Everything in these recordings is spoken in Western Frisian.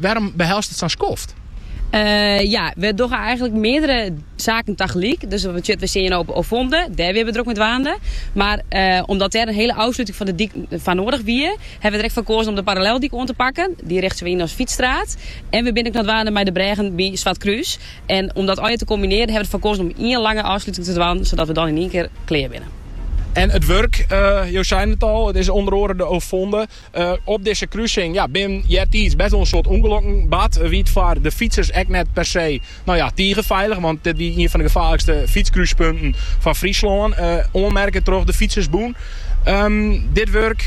Wêrom behelst it sa'n skoft? Ja, we dogge eigentlik meardere saken tagelyk. Dus dat betsjut, we seinen de ovonde, dêr wiene we drok mei dwaande. Mar omdat dêr in hiele ôfsluting fan de dyk foar noardich wie, hawwe we der ek foar koazen om de paralleldyk oan te pakken. Dy richten we yn as fytsstraat. En we binne ek noch dwaande mei de brêgen by Swartkrús. En om dat allegear te kombinearjen hawwe we der foar koazen om ien lange ôfsluting te dwaan, sadat we dan yn ien kear klear binne. En it wurk, jo seinen it al, it is ûnder oare de ovonde. Op dizze krusing, ja, binne eartiids best wol in soad ûngelokken bard, wie it foar de fytsers ek net per se, no ja, tige feilich, want dit wie ien fan de gefaarlikste fytskrúspunten fan Fryslân, oanmerke troch de Fytsersbûn. Dit wurk,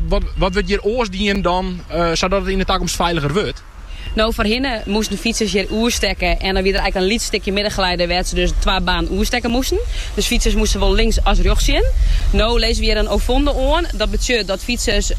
wat wurdt hjir oars dien dan sadat it yn de takomst feiliger wurdt? No foarhinne moasten fytsers hjir oerstekke en dan wie der eigenlijk in lyts stikje middengeleide wêr't se dus twa banen oerstekke moasten. Dus fytsers moasten sawol links as rjochts sjen. No lizze we hjir in ovonde oan. Dat betsjut dat fytsers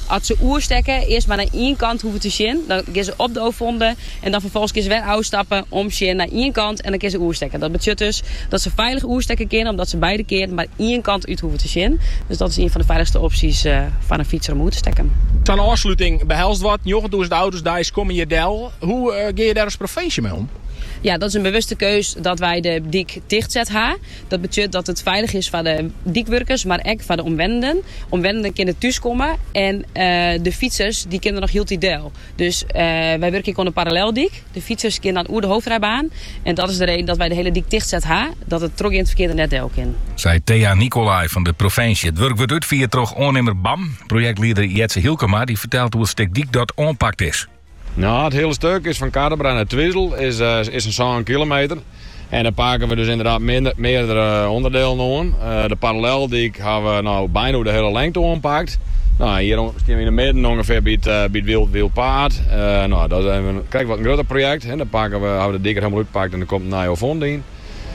as se oerstekke earst mar nei ien kant hoeven te sjen. Dan gean se op de ovonde en dan ferfolgens gean se wer ôfstappen om sjen nei ien kant. En dan kinne se oerstekke. Dat betsjut dus dat se feilich oerstekke kinne, omdat se beide kearen mar ien kant út hoeven te sjen. Dus dat is ien fan de feilichste opsjes foar in fytser om oer te stekken. Sa'n ôfsluting behelst wat, njoggentûzen auto's deis komme hjir del. Hoe gean je dêr as provinsje mei om? Ja, dat is in bewuste keus dat wy de dyk tichtset ha. Dat betsjut dat it feilich is foar de dykwurkers, mar ek foar de omwennenden. Omwennenden kinne thús komme en de fytsers dy kinne noch hieltyd del. Dus wy wurkje ek oan de paralleldyk. De fytsers gean dan oer de hoofdrijbaan en dat is de reden dat wy de hele dyk tichtset ha, dat it trochgeand ferkear der net del kin. Sei Thea Nicolai fan de provinsje. It wurk wurdt útfierd troch oannimmer BAM. Projektlieder Jetze Hielkema dy fertelt hoe it stik dyk dat oanpakt is. No, it hiele stik is fan Quatrebras nei Twizel is in sân kilometer. En dan pake we dus ynderdaad meardere ûnderdelen oan. De paralleldyk ha we no byna oer de hiele lengte oanpakt. No, hjir stean we yn de midden ûngefear by it Wyldpaad. No, dat is krekt wat in grutter projekt. Dan pake we, hawwe we de dyk der hielendal útpakt en der komt in nije ovonde yn.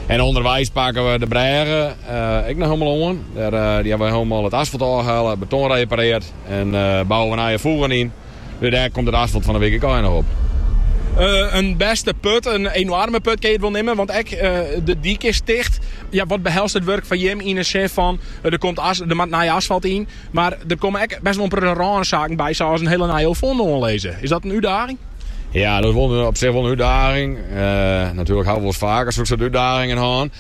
En ûnderweis pake we de brêge ek noch hielendal oan. Dêr hawwe we hielendal it asfalt ôfhelle, beton reparearre en bouwe we nije fûgen yn. Dêr dêr komt it asfalt fan 'e wike ek noch op. In bêste put, in enoarme put kinne je it wol neame, want ek de dyk is ticht. Ja, wat behelst it wurk foar jim yn 'e sin fan der komt der moat nij asfalt yn, mar der komme ek bêst wol in protte rânsaken by, sa as in hiele nije ovonde oanlizze. Is dat in útdaging? Ja, dat is op sich wol in útdaging. Natuerlik hawwe we wol faker soksoart útdagingen hân.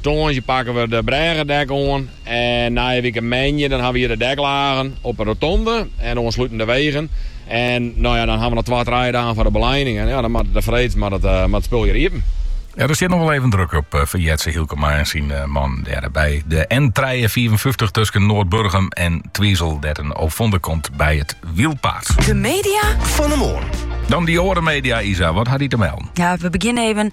Tongersdei pakken we de brêge dek oan en oare wike moandei dan hawwe we hjir de deklagen op de rotonde en oanslutend de wegen. En no ja, dan hawwe we noch twa, trije dagen foar de belijening en ja, dan moat it de freed moat it spul hjir iepen. Ja, der stiet noch wol even druk op foar Jetze Hielkema en syn mannen dêr by de N trijeensfiifenfyftich tusken Noardburgum en Twizel, dêr't in ovonde komt by it wylpaad. De media fan 'e moarn. Dan de oare media, Isa, wat hat dy te melden? Ja, we begjinne even